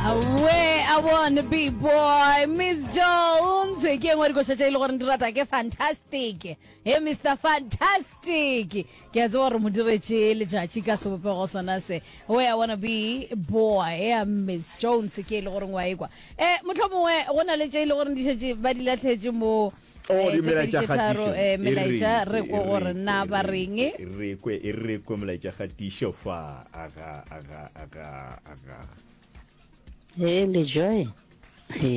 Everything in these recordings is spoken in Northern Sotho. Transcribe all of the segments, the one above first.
Awee, I wanna be boy. Miss Jones, ke engwe dikoša tša e le gore di rata ke fantastic. He Mr. Fantastic. Ke a tseba gore mo diretše letšatši ka sebopego sona se. Awee, I wanna be boy. Yeah, Miss Jones, ke e le gore ngwa ekwa. Eh, motlho mongwe, go na le tše e le gore di šetše ba di latlhetše mo Oh, eh, di tše pedi melaetša tše tharo, kgatišo. eh, E re melaetša kwe, re e ko gore kwe, na e ba re reng kwe, e re kwe, e re kwe molaetša kgatišo fa aga aga aga aga He le joy. He.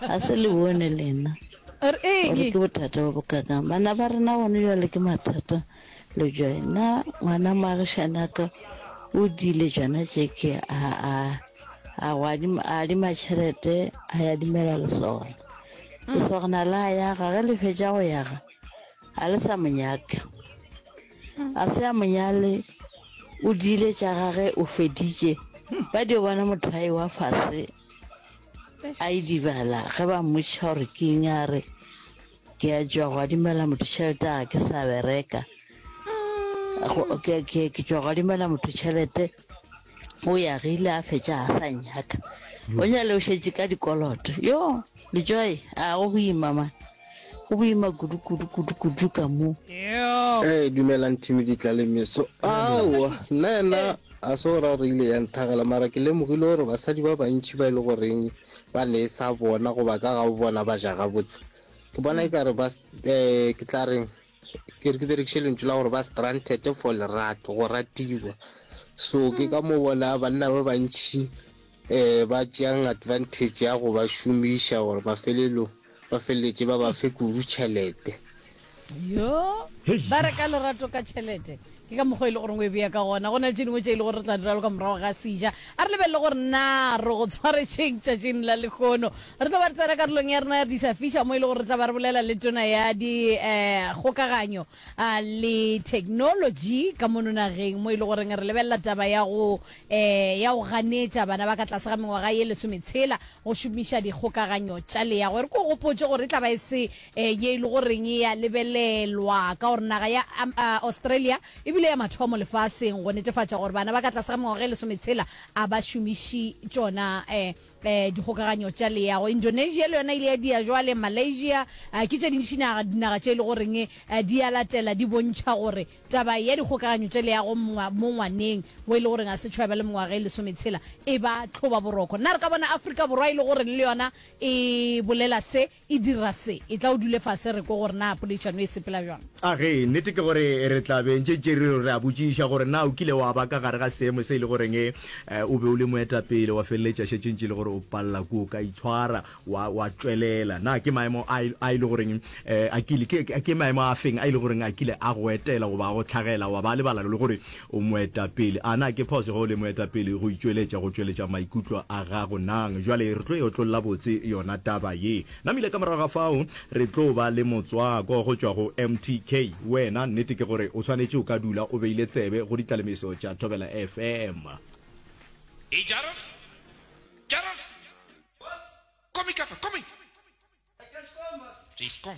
A se le bone lena. Or e Gore ke bothata bo bokakang. Bana ba rena gone jwale ke mathata le joy. Na ngwana moagišane a ka o dile jona tšeke a a a go adima a adima tšhelete a ya dimela lesogana. Lesogana la yaga ge le fetša go yaga ga le sa mo nyaka. a se a monyale o diile tša gage o feditše ba dio bona mothai wa fase a e dibala ge ba mmotšiša gore ke eng a re ke a tšwa go adimela motho tšhelete a ke sa bereka Go- ke- ke- ke tšwa go adimela motho tšhelete o ya ge ile a fetša a sa nyaka o nyale o šetše ka dikoloto yo lejoy a go boima man go boima kudu kudu kudu kudu ka mo ee dumelang thimi ditla le meso aowa nna yena a se gore gore ile ya nthagela mara ke lemogile gore basadi ba bantšhi ba e le goreng ba ne e sa bona goba ka ga bona ba ja gabotse ke bona e kare ba um ke tla reng Ke re ke berekiše lentšu la gore ba stranded for lerato, go ratiwa. So ke ka mo bona banna ba bantši um ba tšeang advantage ya go ba šomiša gore mafelelong ba feleletše ba ba fe kudu tšhelete. Yoo! Ba reka lerato ka tšhelete? Ke ka mokgwa e le gore o e bea ka gona. Go na le tše dingwe tše e le gore re tla di raloka morago ga seja. A re lebelele gore na re go tshwaretšeng tšatšing la lekgono. Re tlo ba re tsena karolong ya rena ya Di Sa Fiša mo e le gore re tla ba re bolela le Tona ya Dikgokaganyo le Theknolotši ka mono nageng mo e le goreng re lebelela taba ya go ya go ganetša bana ba ka tlase ga mengwaga ye lesometshela go šomiša dikgokaganyo tša leago. E re ke go gopotše gore e tla ba e se Ee, ye e lego goreng e a lebelelwa ka gore naga ya Australia e bile ya mathomo lefaseng go netefatša gore bana ba ka tlase ga mengwaga e lesometshela a ba šomiši tšona dikgokaganyo tša leago. Indonesia le yona e ile ya dia bjale. Malaysia ke tše dintši dinaga tše e lego goreng di a latela di bontšha gore taba ya dikgokaganyo tša leago mo ngwaneng wo e lego goreng ga se tšho ya ba le mengwaga e lesometshela e ba tlhobaboroko. Na re ka bona Afrika Borwa e lego goreng le yona e bolela se? E dira se. Etla o dule fase re kwe gore na poledišano e sepela bjang. A Ge nnete ke gore re tla be ntše tše re re a botšiša gore na o kile wa ba ka gare ga seemo se e le goreng o be o le moetapele wa feleletša šetše ntše e le gore o palela kua o ka itshwara wa wa tšwelela. Na ke maemo a a e le goreng a kile ke ke maemo a feng a e le goreng a kile a go etela goba a go tlhagela wa ba lebala le gore O moetapele. A na ke phoso ge o le moetapele go itšweletša go tšweletša maikutlo a gago? Nang. Bjale re tlo e otlolla botse yona taba ye. Namile ka morago ga fao re tlo ba le motswako go tšwa go MTK. Wena, nnete ke gore o swanetše o ka dula o beile tsebe go ditlalemeso tša Thobela FM. Hei Jaref! Jaref! Komi ka fa, komi! Re Eskom.